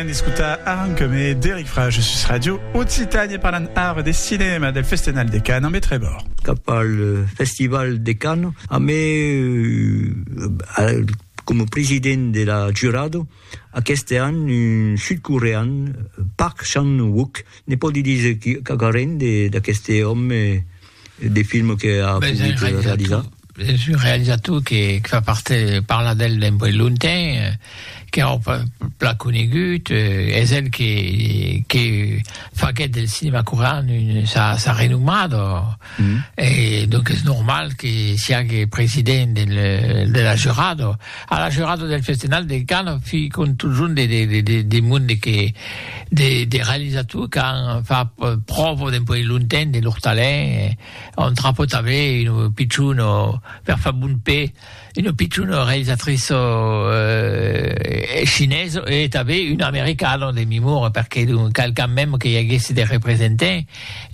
Anèn escotar Arranca'me d'Eric Frage sus Radio Occitània parlant ara de cinèma del Festenal de Canes ambe Trevor. Cap al Festival de Canes ambe coma president de la jurado aqueste an un sud-corean Park Chan-wook ne pòdi díser quauquarren d'aqueste òme De films que a pogut realizar? Es un realizator que fa part, parla d'el d'un puèi lontain, qu'es un plan conegut, es el que faguèt del cinema corean sa renomada, e donc es normal que siague president de la jurada. A la jorada del Festenal de Can fi contujon de de monde que de de realisator qu'an fa pròvo de puèi lonten de lor talent on trapot aver un pichon o per fa bon pè un pichon o realisatrice o e chinés e tanben un american o de memor perque d'un qualqu'an mèm que i aguèsse de representant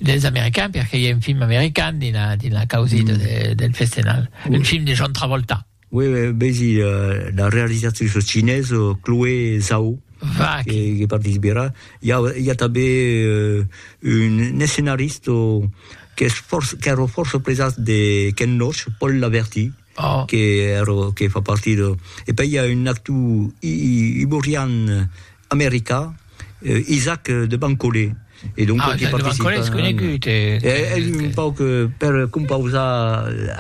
dels americans perque i a un film american dins la dins la causida de del Festenal un film de John Travolta. Uèi vesi la realizatriça cinesa Chloé Zhao que participerà. I a, i a tanben un escenarista qu'es fòrça, qu'èra fòrça presat de Ken Loach, Paul Laverty, que fa partir de... E pei i a un actor iborian, America, Isaac de Bancolé. E donc ah, qui Isaac de Bancolé és conegut. E, e, e, un pauc, per compausar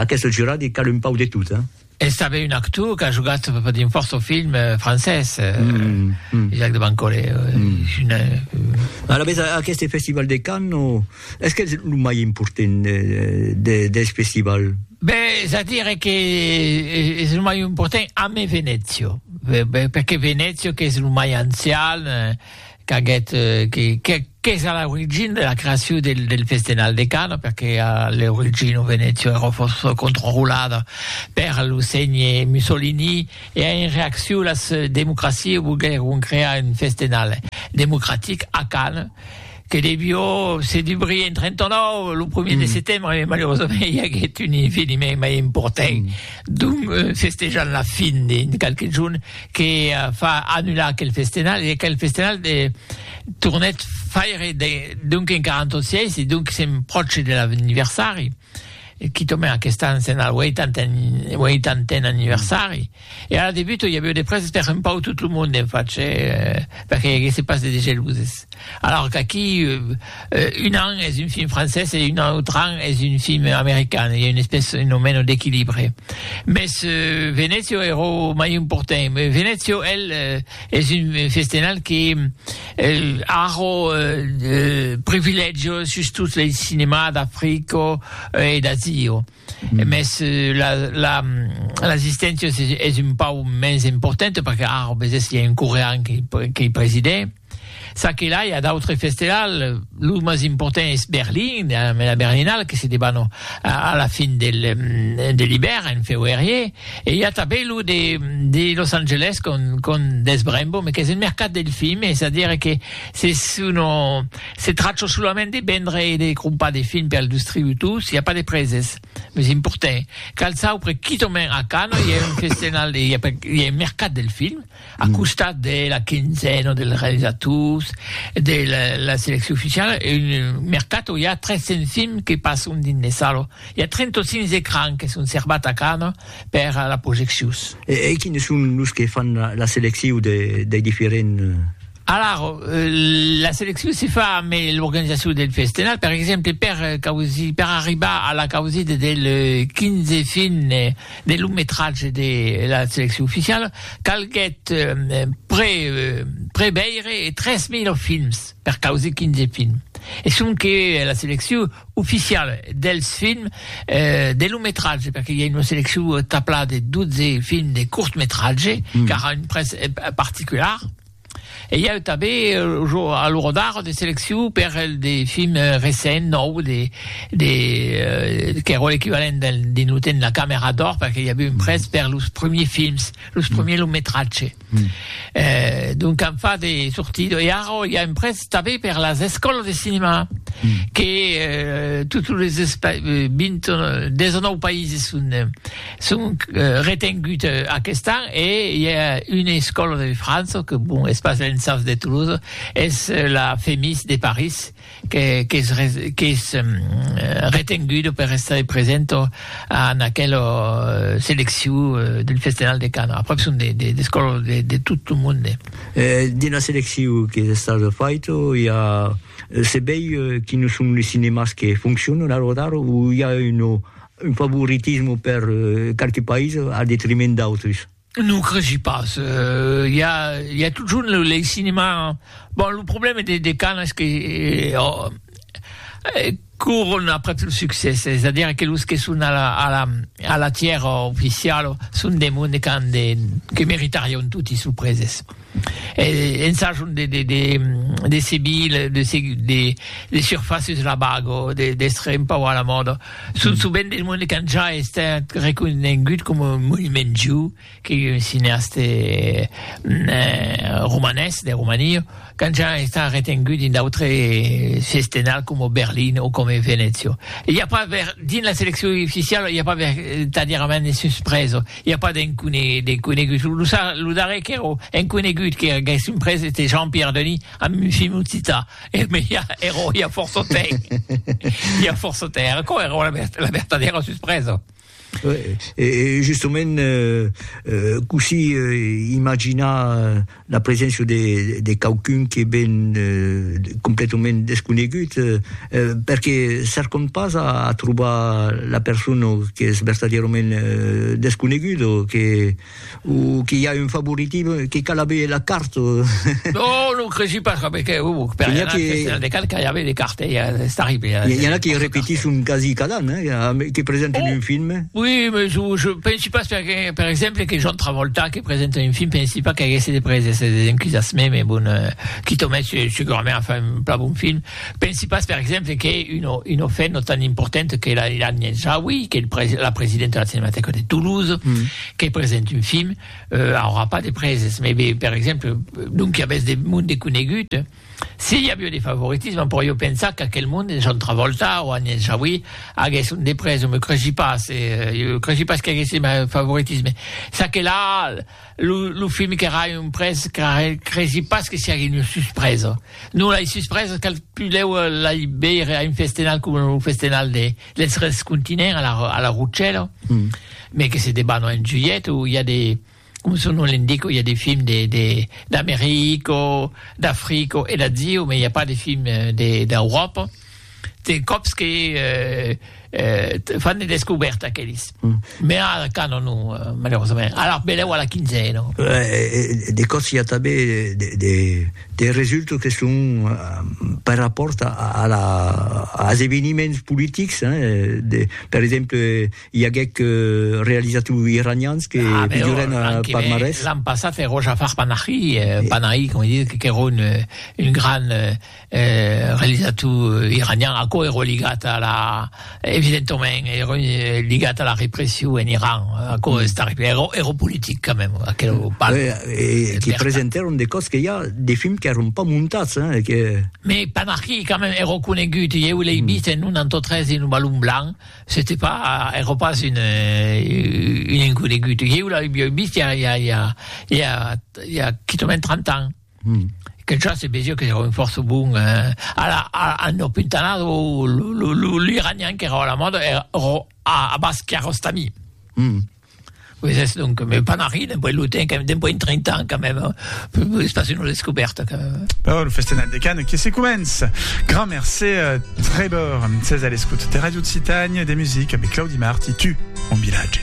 aquest jurat, i cal un pauc de tot, eh? És també un actor que ha jugat dins força film eh, francès, eh, mm, mm. Jacques de Bancolé. Eh, mm. Una... Eh, Alavetz, aquest festival de Cannes, Es qu'es lo mai important deth festival? Ben, es a dire que es lo mai important amé Venezio, perque Venezio qu'es lo mai ancian, qu'aguet, qu'es a l'origina de la creacion del festenal de Cana, perque a l'origina Venezio era fòrça controlada per lo sénhe Mussolini, e en reaccion las democracias volguèron crear un festenal democratic a Cana, Que devió se dubrir en 39, lo primièr de setembre, e malerosament i aguèt un eveniment mai important, donc festejant la fin de qualques jorns, que fa annular aquel festenal, e aquel festenal de tornèt faire donc en 46, e donc sèm pròche de l'anniversari. quitament aquest an se'n al 80n anniversari, e ara de buta i aviu de prèses per un pauc tot lo monde en fach, perque i aguèsse pas de degeluses. Alòr qu'aquí un an es un film francés e un autre an es un film american, i a una espèce un o meno d'equilibre. Mès Venezio èra o mai important, Venezio, el, es un festenal que Arro privilègio sus tot lei cinemà d'Africo e d'Azio. Mes la la l'assisténcia es es un pau mens importante perque arro besés i a un corean qui qui presidè. Ça que là i a d'autres festelal, lo mas important es Berlin, la Berlinale que se debanò a la fin del de l'ibèrn en feuerier. E i a tanben lo de de Los Angeles con con Des Brembo, me qu'es un mercat del film, es a dire que se sono se trachò solament de vendre e de crompar de film per distributors, i a pas de preses, meus importen. Cal saupre quitament a Cannes i a un festenal de i a un mercat del film. A costat de la quinzena dels realizators de la seleccion oficiala, un mercato, i a 300 films que passon dins de salas. I a 35 ecrans que son serbats a Cannes per las projeccions. E quines son los que fan la seleccion dei diferents? Alara, la seleccion se fa ambe l'organizacion del festenal, per exemple per causir, per arribar a la causida del 15 fin de long metratge de la seleccion oficiala, calguèt pre preveire 3000 films per causir 15 films. E sonque la seleccion oficiala dels films de long metratge, perque i a una seleccion taplada de 12 films de cort metratge, qu'ara un prètz particular. E i a eu tanben lo jo a lo Rodar de seleccion per el de film recent nòu de de qu'èra l'equivalent del dins lo temps de la camera d'or perque i a eu un prèst per los premiers films, los premiers long metratge. Donc an fat de sortir e ara i a un prèst tanben per las escòlas de cinema que totes los 20 19 païses son Sonc retengut aquest an e i a una escòla de França que bon es pas l'ENSAF de Toulouse, es la FEMIS de París qu'es qu'es retenguda per estar presenta en aquela seleccion del Festenal de Canes. Aprèp son de de d'escòlas de de tot lo monde. E dins la seleccion qu'es estada faita i a se veir quines son los cinemas que foncionan a l'ora d'ara o i a una Un favoritisme per qualques païses al detriment d'autres? Non cresi pas, i a i a totjorn lo lei cinema, bon lo problème de de Cannes es que courent après lo succès, es a dire que los que son a la a la a la tièra oficiala son de monde qu'an de que meritarion toti sos preses. Ensajant de seguir de surfaces la bago, d'èstre un pauc a la mòda. Son sovent de monde qu'an ja estat reconegut coma un monument viu, que un cineaste romanés, de Romania, qu'an ja estat retengut dins d'autre sestenal coma Berlin o coma Venècia. I a pas dins la seleccion oficiala i a pas vertadièrament de suspresa. I a pas de conegut. Lo darrèr qu'èra un conegut que aguèssim pres ète Jean-Pierre Denis amb un film occità, mès ja èra ja fòrça temps, ja fòrça temps. Aquò èra la vertadèra suspresa. E justament, cossí imaginar? la preséncia de, de quauqu'un que ven eh, completament desconegut, eh, perque cercam pas a, a trobar la persona que es vertadièrament eh, desconegut o que, o que i a un favoritisme que cal aver la carta. no, no cresi pas, que, que, uh, per que, que, de cal que i aver de carta, eh, és terrible. Eh, i, i en a que repetisson quasi cada an, eh, que presenten oh, un film. Oui, mais je, je pensi pas, per exemple, que John Travolta, E presenta un film, pensi pas qu'aguèsse de prèses e desencusassement, me bon, qui t'o mèt, segurament a far un plan bon film. Pensi pas, per exemple, qu'ei una una fin no tan importante que la d'Agnès Jaoui, qu'ei presi la presidenta de la Cinematèca de Toulouse, que presente un film, aurà pas de prèses, me be, per exemple, donc i avèsse de monde conegut, Si i avió de favoritisme, però jo pensar qu'aquel monde de John Travolta o Agnès Jaoui aguèsse un de pres, o me creshi pas, jo creshi pas qu'aguèsse mai favoritisme. Ça que la, lo, lo film qu'èra un pres, creshi pas que siague una suspresa. Non, lai suspresas cal pudèu lai veire a un festenal coma lo festenal de, dels tres continents a la, a la Rutshèla, mai que se debanò en julhet o i a de, Coma son nom l'indica, i a de films d'America, d'Africa e d'Asia, mas i a pas de films d'Euròpa. De còps que fan de descobèrtas aqueles, mas ara cana non, malerosament. Alara belèu a la quinzena. De còps i a tanben de resultats que son per rapòrt als eveniments politics, per exemple, I aguec realizat lo iranians que pigioren a Palmarès. L'an passat èro Jafar Panahi, Panahi, com dit, qu'èro un gran realizator iranian, aquò èro ligat a la, evidentament, èro ligat a la repression en Iran, aquò es terrible, èro politic quand même, aquerò pas. E que presentèron de còps que i a de films qu'èron pas montats, hein, que. Mais Panahi quand même èro conegut, ieu l'ei vist en un antautre dins Lo Balon Blanc, C'était pas, ère pas une, une inconegut. Ieu la ui bieu vist ja, ja, ja, ja, ja quitament 30 ans. Mm. Que ja se vesia que era un fòrça bon, eh, a la, a, a no pintanado, l'iranian que era a la mòda, era, a, a Basquiarostami. Mm. Qué es donc que me panari dempuèi lo temps que dempuèi 30 ans quand même es pas une descoberta quand même. Bon, lo festenat de Cannes que se comença. Grand merci Trevor, ses a l'escoute de Radio Occitània de musique avec Claudi Mart i tu, mon vilatge.